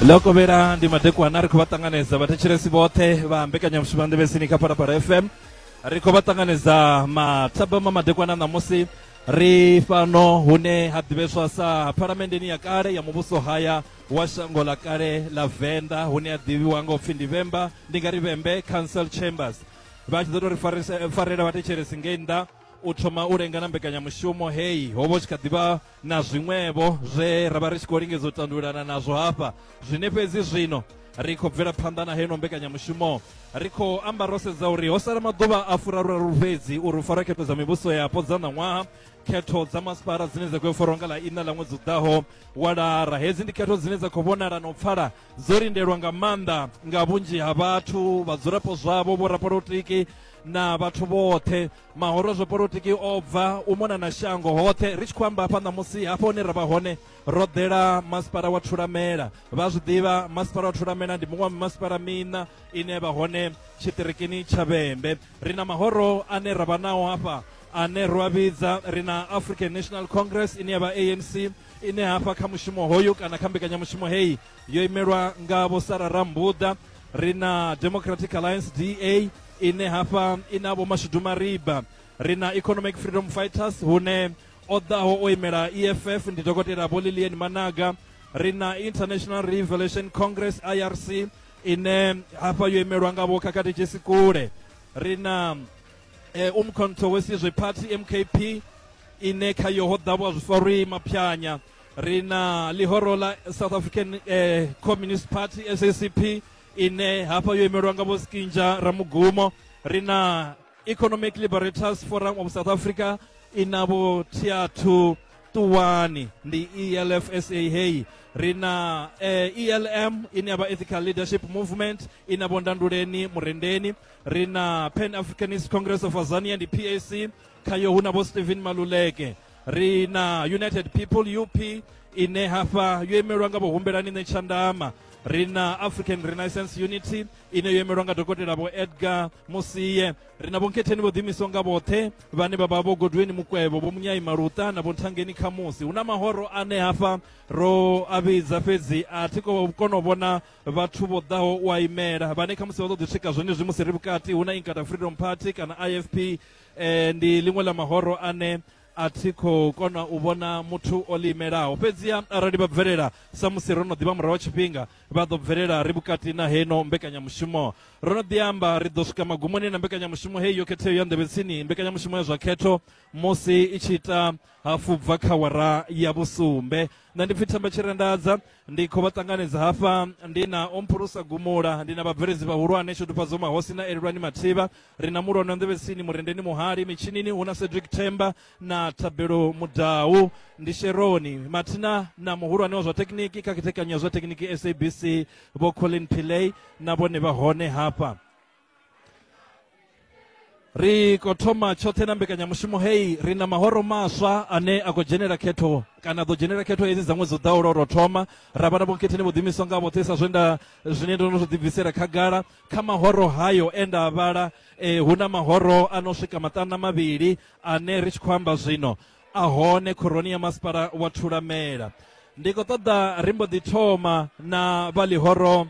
ḽo kovhela ndi madekwana ri khou vha ṱanganedza vhathetshelesi vhoṱhe vha mbekanyamushumo nḓevhesini kha phalaphala fm ri khou vha ṱanganedza mathabama madekwana ṋamusi ri fhano hune ha ḓivheswa sa phalamenndeni ya kale ya muvhuso haya wa shango ḽa kale ḽa venḓa hune ha ḓivhiwa nga upfhi ndi vhemba ndi nga ri vhembe council chambers vha tshi ḓo tou ri farela vhathetshelesi ngei nnḓa u thoma u lenga na mbekanyamushumo heyi ho vha u tshi kha ḓivha na zwiṅwevho zwe ra vha ri tshi khou lingedza u tandululana nazwo hafha zwine fhedzi zwino ri khou bvela phanḓa na heno mbekanyamushumo ri khou amba ro sedza uri ho sala maḓuvha a furaruraru fhedzi uri u farwa khetho dza mivhuso yapo dza ṋaṅwaha khetho dza masipala dzine dza khou farwa nga ḽa iṋa ḽa ṅwedzi u ḓaho wa lara hedzi ndi khetho dzine dza khou vhonala na u pfala dzo lindelwa nga maanḓa nga vhunzhi ha vhathu vhadzulapo zwavho vhorapolotiki na vhathu vhoṱhe mahoro zwo polotiki o bva u mona na shango hoṱhe ri tshi khou amba hafha ṋamusi hafha hune ra vha hone ro ḓela masipala wa thulamela vha zwi ḓivha masipala wa thulamela ndi muṅwe wa masipala miṋa ine ya vha hone tshiṱirikini tsha vhembe ri na mahoro ane ra vha nao hafha ane ro a vhidza ri na african national congress ine ya vha anc ine hafha kha mushumo hoyu kana kha mbekanyamushumo heyi yo imelwa nga vho sara rambuḓa ri na democratic alliance da ine hafha i na vho mashudu mariba ri na economic freedom fighters hune o ḓaho o imela eff ndi dokotela vho lilian managa ri na international revelation congress irc ine hafha yo imelwa nga vho khakhathi jesi kule ri na eh, umkhonto wesizwe party mkp ine khayo ho ḓa vho zwifarwi maphyanya ri na ḽihoro ḽa south african eh, communist party sacp ine hafha yo imelwa nga vho skinja ramugumo ri na economic liberators forum of south africa ina vho thiathu ṱuwani ndi elf sa heyi ri na eh, elm ine ya vha ethical leadership movement ina vho ndanduleni murendeni ri na pan africanist congress of azania ndi pac khayo hu na vho stephen maluleke ri na united people up ine hafha yo imelwa nga vhohumbelani ṋe tshandama ri na african renaissance unity ine yo imelwa nga dokotela vho edgar musiye ri na vhonketheni vho ḓiimiso nga vhoṱhe vhane vha vha vho godweni mukwevho vho munyai maluṱa na vhonthangeni khamusi hu na mahoro ane hafha ro a vhidza fhedzi a thi ko kona u vhona vhathu vho ḓaho u a imela vhane khamusi vha ḓo ḓi swika zwenezwi musi ri vhukati hu na inkata freedom party kana ifp e, ndi ḽiṅwe ḽa mahoro ane a thi khou kona u vhona muthu o ḽi imelaho fhedziha arali vha bvelela samusi ro no ḓivha murahu wa tshifhinga vha ḓo bvelela ri vhukati na heno mbekanyamushumo ro no ḓi amba ri ḓo swika magumoni na mbekanyamushumo heyi yo khetheyo ya nḓevhetsini mbekanyamushumo ya zwa khetho musi i tshi ita hafu bva kha wara ya vhusumbe nṋe ndi pfhi themba tshirendadza ndi khou vha ṱanganedza hafha ndi na omphurusa gumula ndi na vhabveledzi vhahulwane shudufhadzo mahosi na elelwani mathivha ri na mulwana nḓevhesini murendeni muhali mitshinini hu na cedric themba na thabelo mudau ndi sheroni mathina na muhulwane wa zwa thekhiniki kha khethekanyo ya zwa thekhiniki sabc vho colin pillay na vhone vha hone hafha ri khou thoma tshoṱhe na mbekanyamushumo heyi ri na mahoro maswa ane a khou dzhenela khetho kana a ḓo dzhenela khetho hedzi dza ṅwedzi u ḓaho lwa u tou thoma ra vha na vhonkhetheni vho ḓimiswa nga vhoṱhe sa zwe nda zwine ndo no zwi ḓibvisela khagala kha mahoro hayo e nda a vhala eh, hu na mahoro a no swika maṱanu na mavhili ane ri tshi khou amba zwino a hone khoroni ya masipala wa thulamela ndi khou ṱoḓa ri mbo ḓi thoma na vha ḽihoro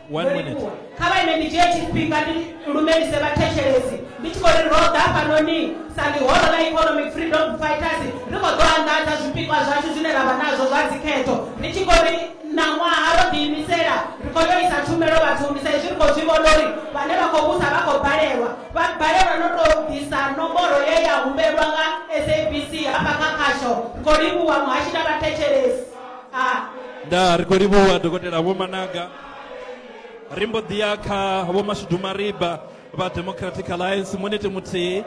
One Muri minute. kuwe. kha vha ine ndi dzhie tshifhinga ndi lumelise vhathetshelesi ndi tshi khou ri ro ḓa fhanoni sa ḽihoro ḽa economic freedom fighters ri khou ḓo anḓadza zwipikwa zwashu zwine ra vha nazwo zwa dzikhetho ri tshi khou ri ṋaṅwaha ro ḓiimisela ri khou yo isa tshumelo vhathuni sa izwi ri khou zwi vhona uri vhane vha khou vhusa vha khou balelwa vha balelwa no tou ḓisa nomboro ye ya humbelwa nga sabc hafha kha khasho ri khou livhuwa muhashi na vhathetshelesi nda ri khou livhuwa dokotela vho managa ri mbo ḓi ya kha vho mashudu mariba vha democratic alliance munete muthihi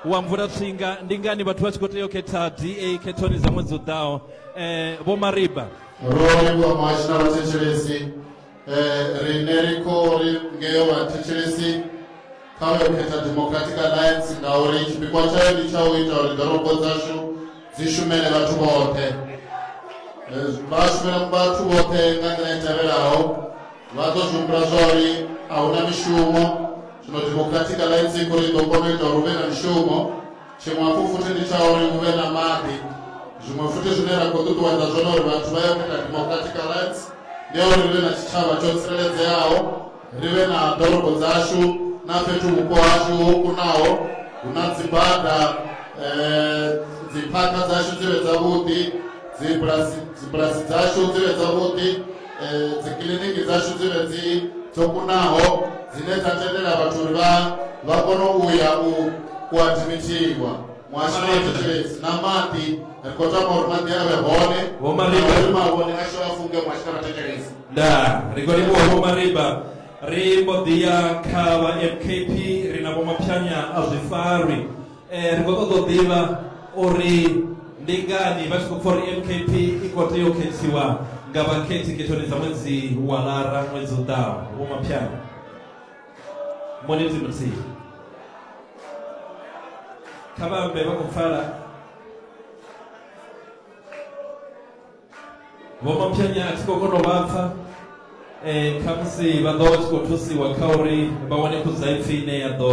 wa mvula tsinga ndi ngani vhathu vha tshi khou tea u khetha da khethoni dza ṅwedzi u ḓaho um vho mariba ro livhuwa muhasho na vhathetshelesi Eh, rine riko ringeyo vathetshelesi kha vha yo khetha democratic alliance ngauri tshipikwa tshayo ndi tsha u ita uri ḓorobo dzashu dzi shumele vhathu vhoṱhe Eh, vha shumela vhathu vhoṱhe nga nḓila i tevhelaho vha ḓo zwi humbula zwa uri a hu na mishumo zwino democratic alliance i khou ri ḓo kona u ita uri hu vhe na mishumo tshiṅwe hafhu futhi ndi tsha uri hu vhe na maḓi zwiṅwe futhi zwine ra khou ṱuṱuwedza zwone uri vhathu vha ye kuita democratic alliance ndi ya uri ri vhe na tshitshavha tsho tsireledzeaho ri vhe na ḓorobo dzashu na fhethu vhupo hashu ho kunaho hu na dzibada um dziphakha dzashu dzi vhe dzavhuḓi dzibulasi dzibulasi dzashu dzi vhe dzavhuḓi eh, dzikiliniki dzashu dzi re dzi dzo kunaho dzine dza tendela vhathu uri vha vha kone u ya u u admithiwa muhasho wa thetshelesi na maḓi ri khou tama uri maḓi a vhe hone Vho Mariba. na uri mavhone ashu a funge muhasho na vhathetshelesi nda ri khou livhuwa vho mariba ri mbo ḓi ya kha vha mkp ri na vho maphyanya a zwifarwi Eh, ri khou ṱoḓa u ḓivha uri ndi ngani vha tshi khou pfa uri mkp i khou tea u khethiwa nga vhakhethi khethoni dza ṅwedzi wa lara ṅwedzi u ḓaho vho maphyana muniti muthihi kha vha ambe vha khou pfala vho maphyanya a thi khou kona u vha pfa um khamusi vha ḓo vha tshi khou thusiwa kha uri vha wane khudzaipfi ine ya ḓo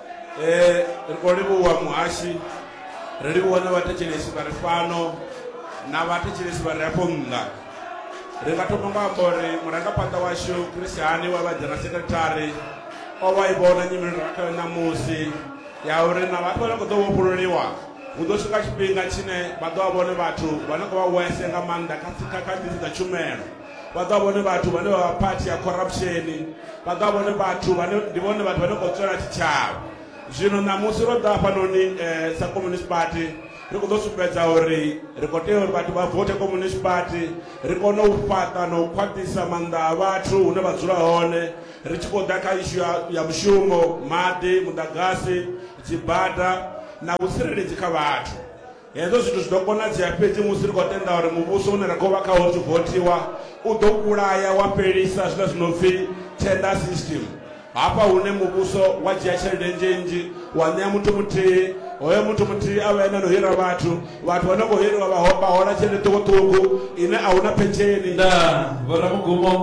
Eh, ri khou livhuwa muhashi ri livhuwa na vhathetshelesi vha ri fhano na vhathetshelesi vha re afho nnḓa ri nga thoma nga amba uri murangaphanḓa washu christiani wa vha dzhena sekretari o vha i vhona nyimelo ra khayo ṋamusi ya uri na vhathu vhane khou ḓo vhofhululiwa hu ḓo swika tshifhinga tshine vha ḓo vha vhone vhathu vhane khou vha wese nga maanḓa kha kha kha ḓisi dza tshumelo vha ḓo vha vhone vhathu vhane vha vha phathi ya khorapsheni vha ḓo vha vhone vhathu vhane ndi vhone vhathu vhane khou tswela tshitshavha zwino ṋamusi ro ḓa hafhanoni um eh, sa communist party ri khou ḓo sumbedza uri ri khou tea uri vhathu vha vote communist party ri kone u fhaṱa na u khwaṱhisa maanḓa a vhathu hune vha dzula hone ri tshi khou ḓa kha ishu ya mushumo maḓi muḓagasi dzibada na vhutsireledzi kha vhathu Hezwo zwithu zwi ḓo konadzea fhedzi musi ri khou tenda uri muvhuso une ra khou vha khawo ri tshi vothiwa u ḓo vhulaya wa fhelisa zwiḽa zwi no pfi tender system, hafha hune muvhuso wa dzhia tshelede nnzhi-nnzhi wa ṋea muthu muthihi, hoyo muthu muthihi a vha ene a no hira vhathu, vhathu vha no khou hiriwa vha vha hola tshelede ṱhukhu-ṱhukhu ine a hu na phensheni. Ndaa, vhoramugumo,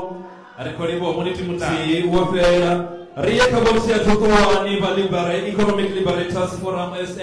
ri khou livhuwa munithi muthihi wo fhela. Ri ye kha vhotsi ya Ṱhuṱhuwani, vha Libera, Economic Liberators Forum, sa,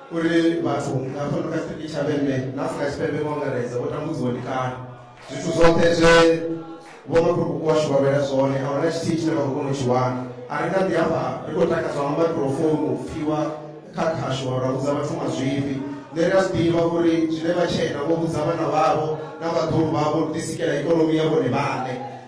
uri vhathu nga fhano kha sitiki tshavhenne na afrika tshipembe nga ungaredza vho tambudziwa ndi kale zwithu zwoṱhe zwe vhomakhulukuku washu vha lwela zwone a huna tshithihi tshine vha khou kona u tshi wana a ri nga ḓi hafha ri khou takadzwa nga microfounu u pfhiwa kha khasho ra vhudza vhathu mazwifhi nṋe ri a zwi ḓivha uri zwine vha tshena vho vhudza vhana vhavho na vhaḓulu vhavho ri ḓisikela ikonomi ya vhone vhaṋe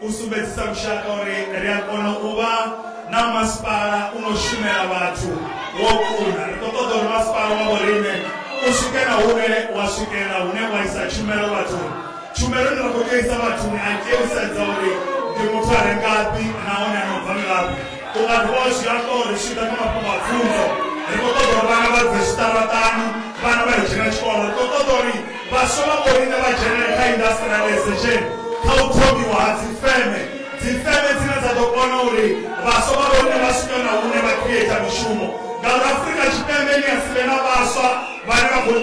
U sumbedzisa lushaka uri ri a kona u vha na masipala u no shumela vhathu wo kuna. Ri khou ṱoḓa uri masipala wa vhoriṋe u swike na hune wa swikela hune wa isa tshumelo vhathuni. Tshumelo ine ra khou tea u isa vhathuni a i tei u sedza uri ndi muthu a re ngafhi nahone a no bva ngafhi. U nga dovha wa zwi amba uri zwi tshi ḓa kha mafhungo a pfunzo, ri khou ṱoḓa uri vhana vha bve zwiṱaraṱani, vhana vha yo dzhena tshikolo. Ri khou ṱoḓa uri Vhaswa vha vhoriṋe vha dzhenela kha indasṱriaḽaizesheni kha u thomiwa ha dzifeme, dzifeme dzine dza ḓo kona uri vhaswa vha vhoriṋe vha swike na hune vha khrieta mishumo, ngauri Afrika Tshipembe ni a si vhe na vhaswa vhane vha khou